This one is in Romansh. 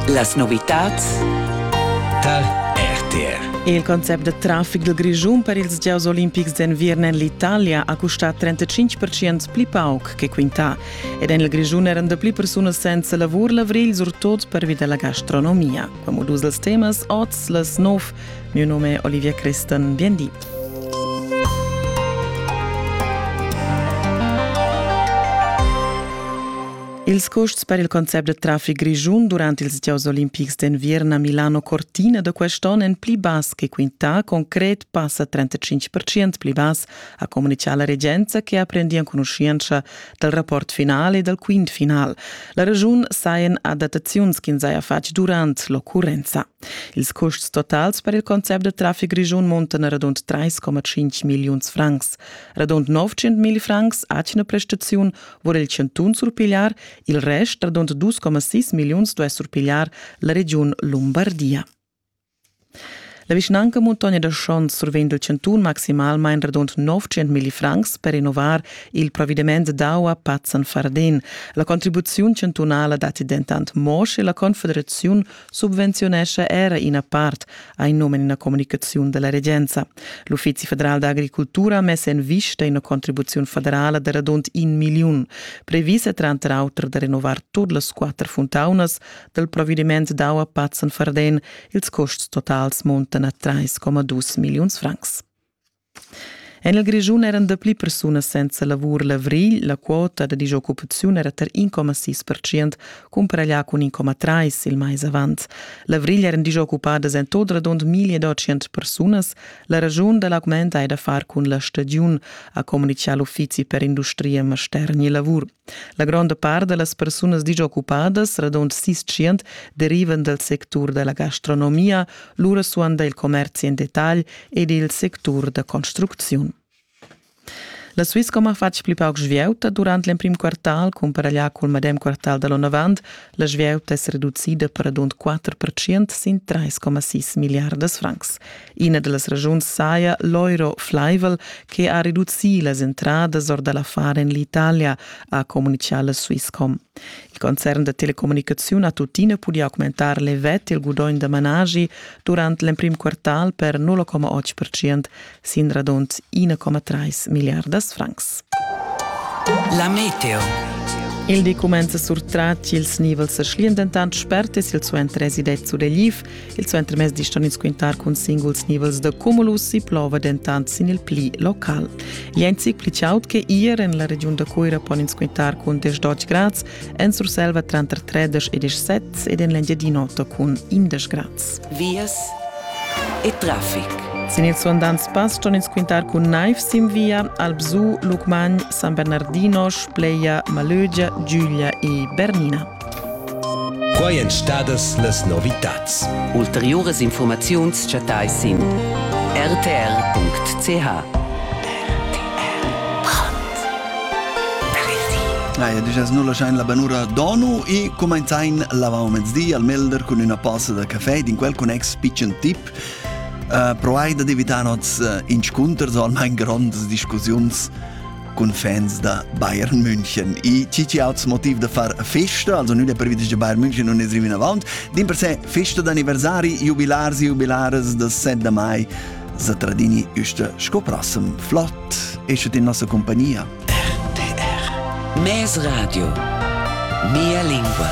Las novitads tar RTR. Il concept da traffic dal Grischun per ils gieus olimpics d'enviern en l'Italia ha custà 35% pli pauc che quintà ed en il Grischun eran da pli persunas senza lavur l'avrigl surtot pervi da la gastronomia. Come dus dels temas oz las nov. Mio nome è Olivia Cristan. Bien di. Ils custs per il concept da traffic grischun durant ils gieus olimpics d'enviern a Milano Cortina da quest'onn èn pli bass che quintà. Concret passa 35 pli bass, ha communitgà la regenza che ha prendi enconuschientscha dal rapport final e dal quint final. La regiun sajan adattaziuns ch'ins haja fatg durant l'occurrenza. Ils custs totals per il concept da traffic grischun muntan radund 3,5 milliuns francs. Radund 900 mil francs atgna prestaziun vor il chantun surpigliar, il rest radund 2,6 milliuns duess surpigliar la regiun Lumbardia. La vischnanca Muntogna da Schons survegn dal chantun maximalmain radund 900 mil francs per innovar il provvediment d'aua Pazzan-Fardin. La contribuziun chantunala datti dentant mo, sche la Confederaziun subvenziunescha era ina part, ha in num en ina communicaziun della regenza. L'Uffizi federal d'agricultura ha mess en vista ina contribuziun federala de radund in miliun, previsa tranter auter de renovar tut las quatter funtaunas del provediment d'aua Pazzen-Farden. Ils costs totals montan a 3,2 milliuns francs. En il Grischun eran dapli persunas senza lavur l'avrigl. La quota da dischoccupaziun era tar 1,6 percent, cumparaglià cun 1,3 il mais avant. L'avrigl eran dischoccupadas en tot radund 1800 persunas. La raschun da l'augment hai da far cun la stagiun, ha communitgà l'uffizi per industria, mastergn e lavur. La gronda part da las persunas dischoccupadas, radund sis tschient, derivan dal sectur da la gastronomia, lura suonda il commerzi en detagl ed il sectur da construcziun. La Swisscom ha fatg pli pauc svieuta durant l'emprim quartal, cumparaglià cul medem quartal da l'onavant. La svieuta es reducida per radund 4% sin 3,6 milliardas francs. Ina da las ragiuns saja l'euro flaivel che ha reducì las entradas or da l'affar en l'Italia, ha communitgà la Swisscom. Il concern da telecommunicaziun ha tuttina pudì augmentar levet il gudogn da managi durant l'emprim quartal per 0,8% sin radund 1,3 milliardas francs. La meteo. Il di cumenza surtrat ils nivels a Schlien dentant spert e silsuenter residet su Deliv. Il suentermezdi ston ins quintar cun singuls nivels da cumulus e plova dentant sin il pli local. Gli ein zic pli chaud che ier en la regiun da Cuira pon ins quintar cun 10 grads, en Surselva tranter 13 e 17 ed en l'Engiadina cun 11 grads. Vias e traffic. Sin ils suandants pass ston ins quintar cun naiv sin via Albsu, Lucmagn, San Bernardino, Spleia, Malögia, Giuglia e Bernina. Quai èn stadas las novitads. Ulteriuras infurmaziuns chattais sin rtr.ch. La duas nu laschain la banura Donu e cumainzain l'avant mezdi al Melder cun üna posa da café d'in quel connex pitschen tip. Uh, proai da evitar nots uh, inscunters o almain grondas discussiuns cun fans da Bayern München. I ci auts motiv da far festa, also nüda previdis da Bayern München non es rivin avant. Din per se festa d'anniversari, jubilars e jubilares da 7 de mai Zatradini üste scoprassem flott, eschet in nossa compagnia. RTR Mes Radio Mia lingua